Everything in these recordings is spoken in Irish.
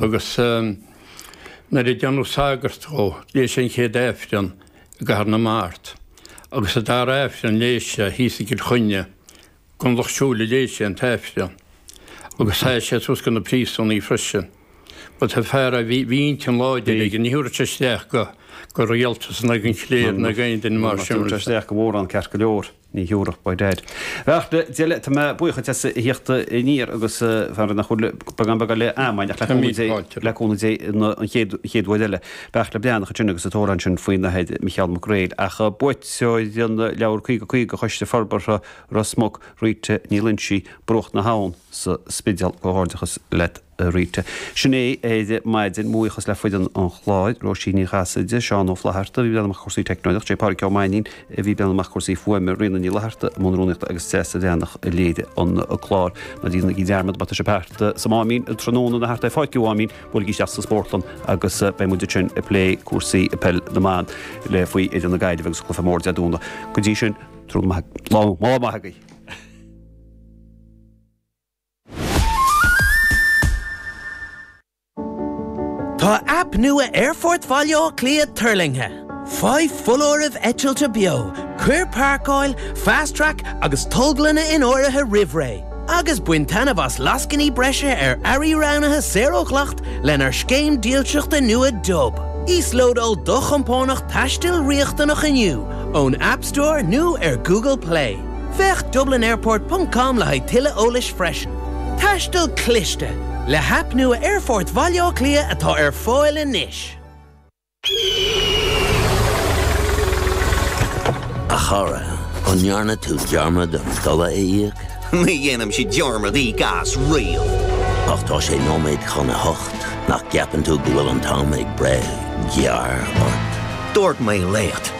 Agus nuair a déanadh sagart dhe, léigh sé an chéad Aifreann i gCathair na Mart, agus an dara hAifreann léigh sé thíos Tigh Choinne, gon lucht siúil a léigh sé an tAifreann, agus sheas sé suas do na príosúnaigh freisin. Ba fear a bhí intinn láidir aige, ní thabharfadh sé isteach go rialtas, ná gon chléir, ná go aon duine mar sin. Ach dúirt sé isteach go mórán, ceart go leor. Ní Eorpach ba dear. Bhuel a Deile tá mé buíoch dhuit as a theacht aniar agus fara nach bhfuil beagán beagán le amain ach le cúnamh Dé an chéad uair eile. Bheadh le Beannach ansin agus í ag caint ansin faoin Athair Micheál Mac Gréil ach buaiteoir an leabhair Caoga Caoga do Choiste Forbartha Ros Muc, Rita Ní Loinsigh, Bruach na hAbhann sa Spidéal. Comhghairdeachas leat. Rita. Sin é ar maidin, mo bhuíochas le foireann an chláir, Róisín Ní Chasaide,, Seán Ó Flaithearta a bhí i mbun cúrsaí teicneolaíocht, Pádraic Ó Mainín a bhí i mbun cúrsaí fuaime, Ríona Ní Fhlatharta i mbun rúnaíochta agus Treasa Bhreathnach a léirigh an clár. Ná déanaigí dearmad, má tá sibh thart sa Máimín tráthnóna nó thart ar Pháirc an Mháimín, buailigí isteach sa Spórtlann agus beidh muid ansin ag plé cúrsaí peil na mban libh faoi fhoireann na Gaillimhe agus cluiche mór Dé Domhnaigh. Go dtí sin, tráthnóna maith, lá maith agaibh. Tá aip nua Aerfort Bhaile Átha Cliath tuirlingthe. Faigh foláirimh eitilte beo, cuir Páirceáil, Fast Track agus Tolglanna in áirithe roimh ré, agus bain taitneamh as lascainí breise ar earraí roghnaithe saor ó dhleacht lenár scéim dílseachta nua Dub. Íoslódáil do chompánach taistil riachtanach inniu ón App Store nó ar Google Play. Féach dublinairport ponc com le haghaidh tuilleadh eolais freisin. Taisteal Cliste, le haip nua Aerfort Bhaile Átha Cliath atá ar fáil anois. A chara, an ndearna tú dearmad an dola a íoc? Ní dhéanaimse dearmad íoc as riamh. Ach tá sé nóiméad chun a hocht, nach gceapann tú go bhfuil an t-am ag breith gearr ort? Dúirt mé leat.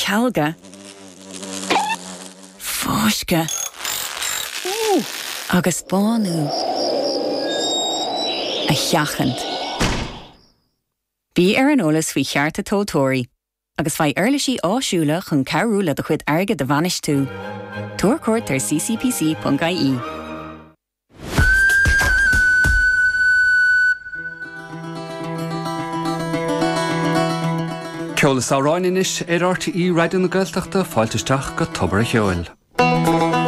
cealga, fáisceadh agus bánú a sheachaint. Bí ar an eolas faoi chearta tomhaltóirí agus faigh uirlisí áisiúla chun cabhrú leat do chuid airgid a bhainistiú. Tabhair cuairt ar ccpc.ie. Ceol is amhráin anois ar RTÉ Raidió na Gaeltachta, fáilte isteach go Tobar a' Cheoil.